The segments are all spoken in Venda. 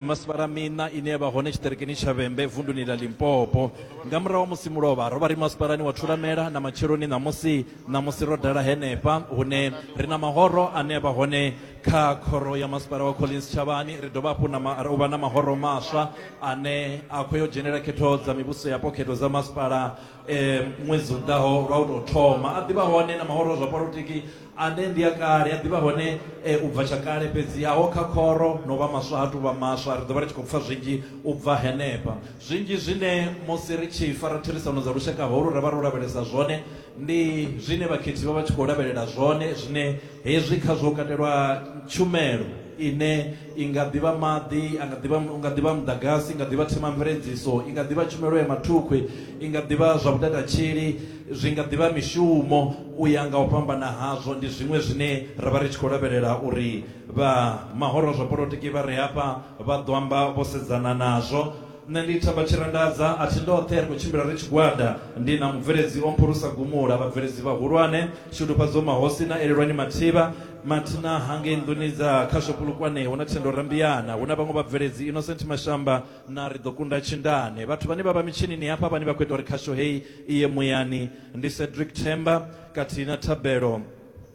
Masipala miṋa ine ya vha hone tshiṱirikini tsha Vhembe vunduni ḽa Limpopo. Nga murahu ha musi mulovha, ro vha ri masipalani wa Thulamela na matsheloni ṋamusi. Ṋamusi ro dala henefha hune ri na mahoro ane a vha hone kha Khoro ya Masipala wa Collins Tshavhani. Ri dovha hafhu na ma, u vha na mahoro maswa ane a khou yo dzhenela khetho dza mivhuso yapo, khetho dza masipala ṅwedzi u ḓaho lwa u tou thoma. A ḓi vha hone na mahoro a zwa polotiki. Ane ndi a kale, a ḓivha hone u bva tsha kale, fhedzi aho kha khoro na u vha maswa ha tou vha maswa. Ri ḓo vha ri tshi khou pfa zwinzhi u bva henefha. Zwinzhi zwine musi ri tshi fara therisano dza lushaka holu ra vha ro lavhelesa zwone, ndi zwine vhakhethi vha vha tshi khou lavhelela zwone, zwine hezwi khazwo hu katelwa tshumelo ine i nga ḓi vha maḓi, a nga ḓi vha, u nga ḓi vha muḓagasi, i nga ḓi vha themamveledziso, i nga ḓi vha tshumelo ya mathukhwi, i nga ḓi vha zwa vhutatatshili, Zwi nga ḓi vha mishumo u ya nga u fhambana hazwo. Ndi zwiṅwe zwine ra vha ri tshi khou lavhelela uri vha mahoro a zwa polotiki vha re hafha vha ḓo amba vho sedzana nazwo. Nṋe ndi Themba Tshirandadza, a thi ndoṱhe, ri khou tshimbila ri tshigwada. Ndi na mubveledzi o mphurusa gumula, vhabveledzi vhahulwane, Shudufhadzo Mahosi na Elelwani Mathiba, mathina hangei nḓuni dza khasho Polokwane hu na Thendo Rambiyana, hu na vhaṅwe vhabveledzi, Innocent Mashamba, na ri ḓo kunda tshindane vhathu vhane vha vha mitshinini hafha vhane vha khou ita uri khasho heyi i ye muyani ndi cedric themba khathihi na thabelo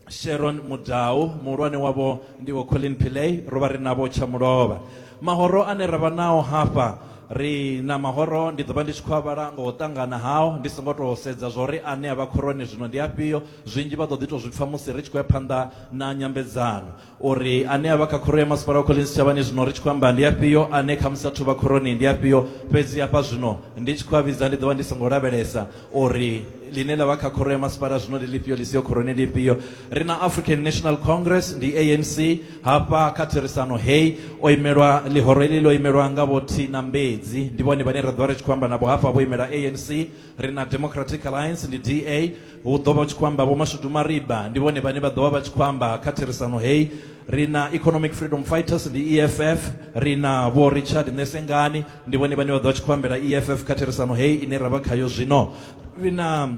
sharon mudau muhulwane wavho ndi vho colin pillay ro vha ri navho tshamulovha mahoro ane ra vha nao hafha ri na mahoro ndi ḓo vha ndi tshi khou a vhala nga u ṱangana hao ndi songo tou sedza zwo ri ane a vha khoroni zwino ndi afhio zwinzhi vha ḓo ḓi tou zwi pfha musi ri tshi khou ya phanḓa na nyambedzano uri ane a vha kha khoro ya masipala wa Collins Tshavhani zwino ri tshi khou amba ndi afhio, ane khamusi a thuvha khoroni ndi afhio. Fhedzi hafha zwino ndi tshi khou a vhidza ndi ḓo vha ndi songo lavhelesa uri ḽine ḽa vha kha khoro ya masipala zwino ndi ḽifhio, ḽi siho khoroni ndi ifhio. Ri na African National Congress, ndi ANC, hafha kha therisano heyi. O imelwa, ḽihoro heḽi ḽo imelwa nga Vho Tina Mbedzi, ndi vhone vhane ra ḓo vha ri tshi khou amba navho hafha vho imela ANC. ri na democratic alliance ndi da hu ḓo vha tshi khou amba vhomashudu mariba ndi vhone vhane vha ḓo vha vha tshi khou amba kha therisano heyi ri na economic freedom fighters ndi eff ri na vho richard nesengani ndi vhone vhane vha ḓo vha tshi khou ambela eff kha therisano heyi ine ra vha khayo zwino ri na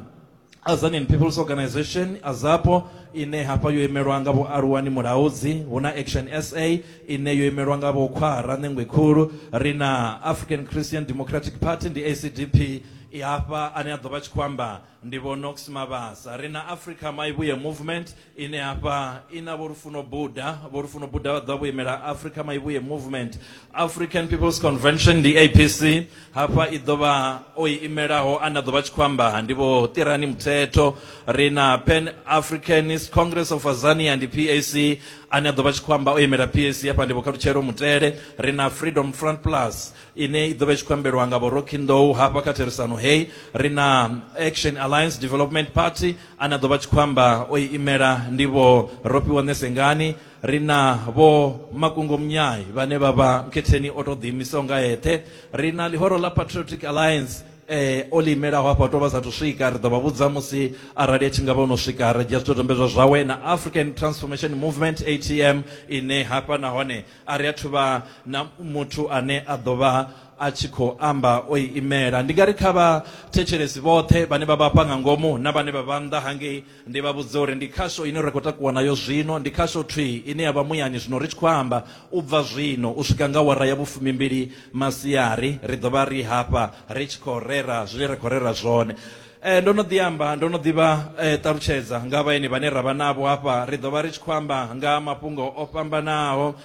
Azanian People's Organization Azapo ine hafha yo imelwa nga vho Aluwani Mulaudzi hu na Action SA ine yo imelwa nga vho khwara ṋengwe khulu ri na african christian democratic party ndi acdp i hafha ane a ḓo vha tshi khou amba ndi vho nox mabasa ri na africa maivhuye movement ine hafha i na vho lufuno buda vho lufuno buda vha ḓo vha vho imela africa maivhuye movement african people's convention ndi apc hafha i ḓo vha o i imelaho ane a ḓo vha tshi khou amba ndi vho tirani muthetho ri na pan africanist congress of azania ndi pac ane a ḓo vha tshi khou amba o imela pac hafha ndi vhokhalutshelo mutele ri na freedom front plus ine i ḓo vha i tshi khou ambelwa nga vhoroki nḓou hafha kha therisano heyi ri na action alliance development party ane a ḓo vha tshi khou amba o i imela ndi vho rofhiwa ṋesengani ri na vho makungo munyai vhane vha vha nkhetheni o tou ḓiimisaho nga eṱhe ri na ḽihoro ḽa patriotic alliance o ḽi imelaho hafho a tou vha sathu swika ri ḓo vha vhudza musi arali a tshi ngavha ono swika ra dzhia zwidodombedzwa zwawe na African Transformation Movement A_T_M ine hafha nahone a ri athu vha na muthu ane a ḓo vha a tshi khou amba o i imela. Ndi nga ri kha vha thetshelesi vhoṱhe vhane vha vha hafha nga ngomu na vhane vha vha nnḓa hangei Ndi vha vhudze uri ndi khasho ine ra khou takuwa nayo zwino, ndi khasho thwii ine ya vha muyani zwino ri tshi khou amba. U bva zwino u swika nga awara ya vhufumimbili masiari, ri ḓo vha ri hafha ri tshi khou rera zwine ra khou rera zwone. Ndo no ḓi amba, ndo no ḓi vha ṱalutshedza nga vhaeni vhane ra vha navho hafha. Ri ḓo vha ri tshi khou amba nga ha mafhungo o fhambanaho.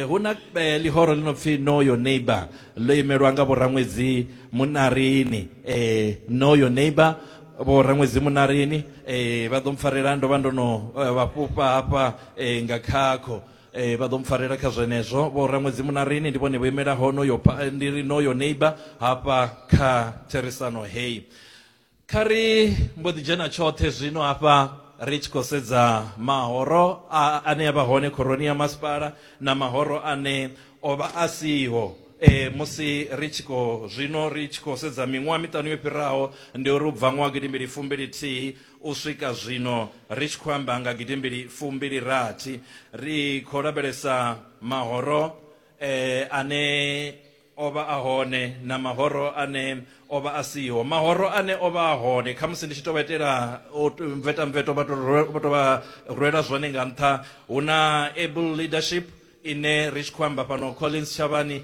Hu na ḽihoro ḽi no pfi Know Your Neighbour, ḽo imelwa nga Vho Raṅwedzi Muṋarini. Know Your Neighbour. vho Raṅwedzi Munarini eh, vha ḓo mpfarela ndo vha ndo no eh, vha fhufha hafha eh, nga khakho eh, vha ḓo mpfarela kha zwenezwo vho Raṅwedzi Munarini ndi vhone vho imela honoyo eh, ndi ri noyo neighbor hafha kha therisano heyi kha ri mbo ḓi dzhena tshoṱhe zwino hafha ri tshi khou sedza mahoro a, ane a vha hone khoroni ya masipala na mahoro ane O vha a siho. E, musi ri tshi khou zwino ri tshi khou sedza miṅwaha miṱanu yo fhiraho, ndi uri u bva ṅwaha gidimbili fumbili-thihi u swika zwino, ri tshi khou amba nga gidimbili fumbili-rathi, ri khou lavhelesa mahoro e, ane o vha a hone na mahoro ane o vha a siho mahoro ane o vha a hone khamusi ndi tshi tou vha itela u t- mvetamveto vha tou rwe- vha tou vha rwela zwone nga nṱha hu na able leadership ine ri tshi khou amba fhano collins tshavhani